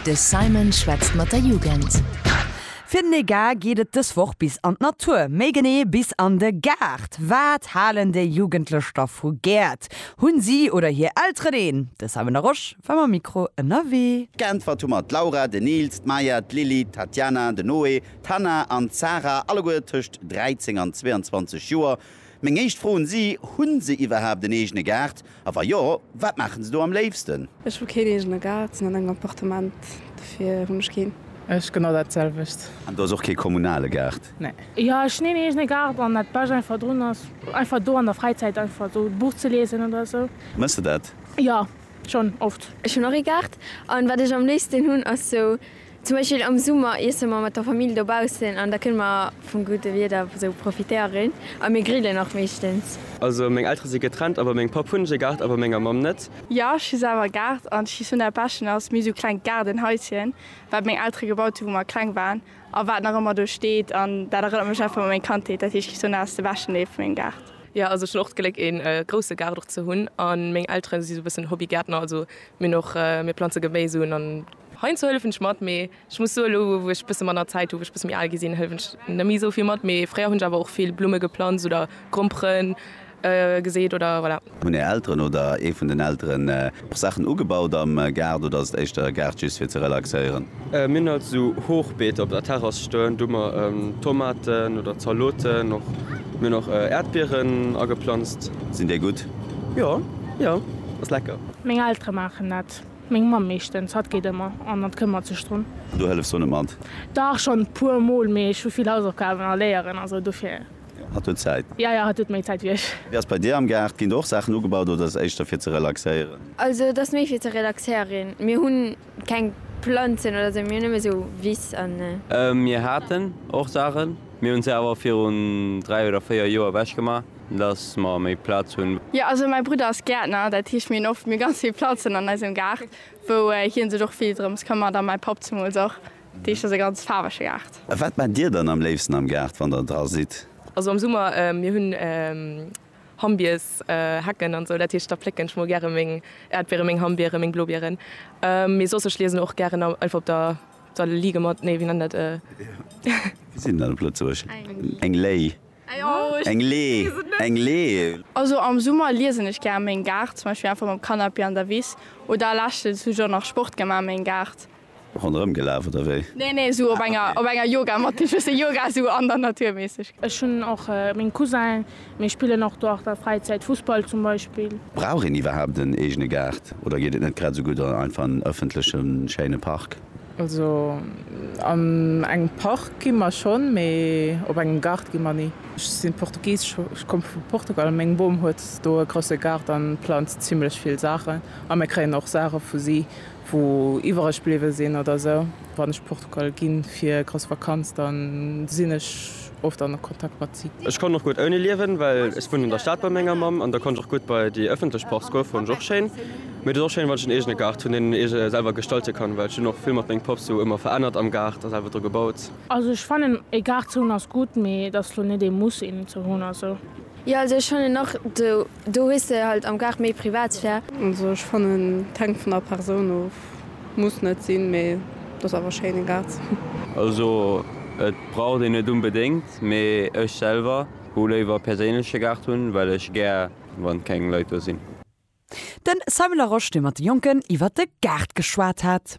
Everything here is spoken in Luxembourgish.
De Simon schwätzt mat der Jugend. Fir den Egar geet et dës Woch bis an d'Natur, méi genee bis an de Gaart. Wat halen déi Jugendlech da vu Gäert? Hunn si oder hir Elteren een? De Simon Larosche war mam Mikro ënnerwee. Geäntwert hu mer d'Laura, den Nils, d'Maya, d'Lili, d'Tatiana, den Noé, d'Hannah an d'Sarah, alleguer tëscht 13 an 22 Joer. Meng éischt Fro un si, Hunn se iwwerhaapt en eegene Gaart? A wa jo, wat maachen se do am léifsten? Ech hu keen eegene Gaart, sinn an engem Appartement, dofir hunn ech keen. Ech genau dat selwecht. An do ass och kee kommunale Gaart? Nee. Jo, ech hunn een eegene Gaart an dat bescht einfach drun ass einfach do an der Fräizäit einfach esou e Buch ze liesen oder esou. Mëss de dat? Jo, schonn oft. Ech hunn och ee Gaart an wat ech am léifsten hunn ass sou. Zum Beispill am Summer iesse mer mat der Famill dobaussen an da kënne mer vum gudde Wieder esou profitéieren a mir grillen och meeschtens. Also meng Eltere si getrennt a bei mengem Papp hunn ech e Gaart a bei menger Mamm net. Jo, ech hu selwer e Gaart an d'Chez Sona Peschen ass méi esou klengt Gaardenhaischen, wat meng Eltere gebaut hunn, wou mer kleng waren a wat nach ëmmer do steet an dat erënnert mech einfach u meng Kandheet. Dat heescht, Chez Sona ass de beschten Deel vu mengem Gaart. Jo, also ech hunn och d'Gléck e grousse Gaart och ze hunn a meng Eltere si esou e bëssen Hobbygäertner, also mir hunn och, mir planze Geméis un an Heiansdo hëllefen ech mat, mee ech muss soen, elo wou ech bësse manner Zäit hu, wou ech bësse méi al gi sinn, hëllefen ech net méi esou vill mat. Mee fréier hunn ech awer och vill Blumme geplanzt oder Grompere geseet oder voilà. Hunn är Elteren oder ee vun den Elteren och Saachen ugebaut am Gaart oder ass et éischter e Gaart just fir ze relaxéieren? Mir hunn alt esou Hochbeeter op der Terrass stoen, do hu mer Tomaten oder Zaloten och. Mir hunn och Äerdbieren ageplanzt. Sinn déi gutt? Jo, jo, ass lecker. Meng Eltere maachen dat. Meng Mamm meeschtens, hatt geet ëmmer an hatt këmmert sech drun. An du hëllefs do net mat? Dach, schonn e puer Mol, mee ech hu vill Hausaufgaben a Léieren a sou, dofir. Jo, hatt huet Zäit. Jo, jo, hatt huet méi Zäit wéi ech. Wéi ass et bei dir am Gaart? Ginn do och Saachen ugebaut oder ass et éischter fir ze relaxéieren? Also et ass méi fir ze relaxéieren. Mir hunn keng Planzen oder sou, mir hunn nëmme sou Wiss an. Mir haten och Saachen, mir hunn se awer virun dräi oder véier Joer ewechgemaach. Dass mer méi Plaz hunn. Jo, also mäi Brudder ass Gäertner, dat heescht mir hunn oft mir ganz vill Planzen an eisem Gaart, wou hien sech och vill drëms këmmert a mäi Papp zemools och. Dat heescht ass e ganz faarwege Gaart. A wat maacht Dir dann am léifsten am Gaart, wann Der dra sidd? Also am Summer, mir hunn Hammbiers, Hecken an esou, dat heescht da plécken ech mol gäre meng Äerdbiere, meng Hammbiere, meng Blobieren. Mee soss, ech liesen och gären einfach op der, da liige mer, nee wéi nennt een dat? Wéi seet een dat op Lëtzebuerg? Eng Léi. Eng Lee, eng Lee. Also am Summer liesen ech gär méin Gaart, zum Beispill einfach mam Canapé an der Wiss oder leschtens hu ech och nach Sport gemaach méin Gaart. Ronderëm gelaaf oder wéi? Nee nee sou op enger op enger Yogamatt gin schwëssen Yoga sou an der Natur mässeg. Ech hun och méng Cousinen, mir spillen och do an der Fräizäit Fussball zum Beispill. Brauch een iwwerhaapt en eegene Gaart oder geet et net grad sou gutt einfach an ëffentlechen schéine Park? Also an engem Park gi mer schonn, mee op engem Gaart gi mer ni. Ech sinn Portugisesch, ech komme vu Portugal. Meng Bom huet do e grousse Gaart an planzt zimlech vill Saachen a mir kréien och Saache vu si wou iwwereg bliwwe sinn oder sou. Wann ech Portugal ginn fir grouss Vakanz dann sinn ech. oft an Kontakt mat si. Ech konnt och gutt ouni liewen, well ech wunnen an der Stad bei menger Mamm an da konnt ech och gutt bei déi ëffentlech Parks goen, fonnt ech och schéin. Mee et ass och schéin, wann ech en eegene Gaart hunn, deen een eege selwer gestalte kann, well ech hunn och vill mat meng Pops sou ëmmer verännert am Gaart a selwer dru gebaut. Also ech fannen ee Gaart ze hunn ass gutt, mee et ass lo net ee Muss een ze hunn a sou. Jo also ech fannen och, do hues de halt am Gaart méi Privatsphär. Also ech fannen, et hänkt vun der Persoun of. Muss net sinn, mee et ass awer schéin, en Gaart. Also et braucht een net unbedéngt, mee ech selwer hu léiwer e perséinleche Gaart hunn, well ech gär wann keng Leit do sinn. Den Simon Larosche, dee mat de Jonken iwwer de Gaart geschwat hat.